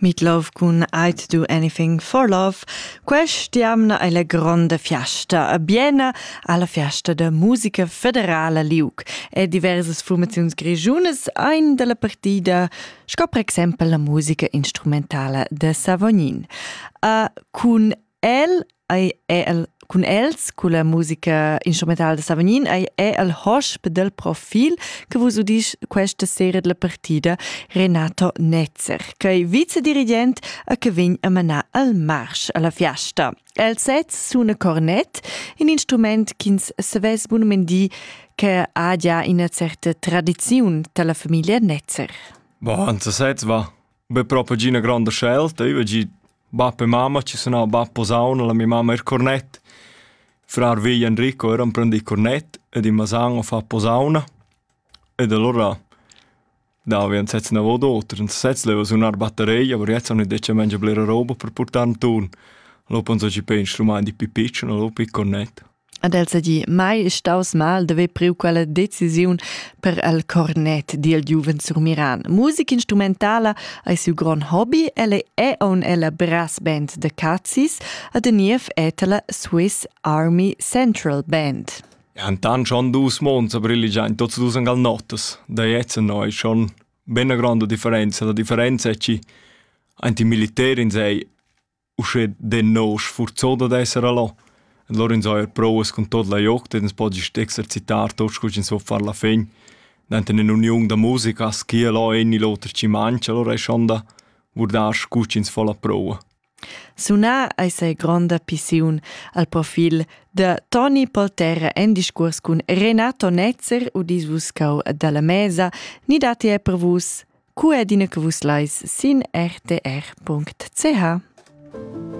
Meet Love cun I to do anything for love. Quest'jamna è la gronda fiasta a Biena alla fiasta da musica federala Liuc e diversas formazioni grigiunas ein dalla partida, sco per exempel la musica instrumentala de Savognin. A cun El ei el cun els culla musica instrumentala da Savognin ei è el hosp del profil che vus udisch questa sera della partida Renato Netzer, che è vicedirigent a che vegn a manar al marsch alla fiasta. El sez suna cornet, in instrument ch'ins savess bunament dir che ha già ina certa tradiziun dalla famiglia Netzer. Boah, interessant war. be propa gi 'na gronda scelta. Io gi bap e mamma ci sunà bap posauna, la mia mamma er cornett. Frar vegl Enrico era imprendì cornett ed in masan a far posauna. Ed allora davi an sez navo d'oter. In sez leva sunar batteria, aber jetzt han detg mengia blera roba per purtar in tun. Lo pan so ci pensa, lu mein di pi piccion, lo pi cornett. Ad el seigi mai staus mal de ver priu quella decisiun per el cornet dil giuven surmiran. Musica instrumentala ei siu grond hobby, el è on ella brass band de Cazis, a de niev et la Swiss Army Central Band. Antan schon dus monza brilligian tots dus angal notas, da jetzt no è schon ben grande differenza, la differenza è ci anti militär in sei uschè de nou sfurzoda d'esser allò. Allora ins ha er provas con tot la joc, ins po gist exercitar tot scu ins vo far la fin. Denton in uniun da musica schia là egni l'oter ci mangia, allora è schon da guardar scu ins fa la prova. Sunar eis ei gronda pissiun al profil da Toni Polterra en discurs cun Renato Netzer u disvuscau dalla mesa, ni dati è per vus cu adina che vus lais sin rtr.ch.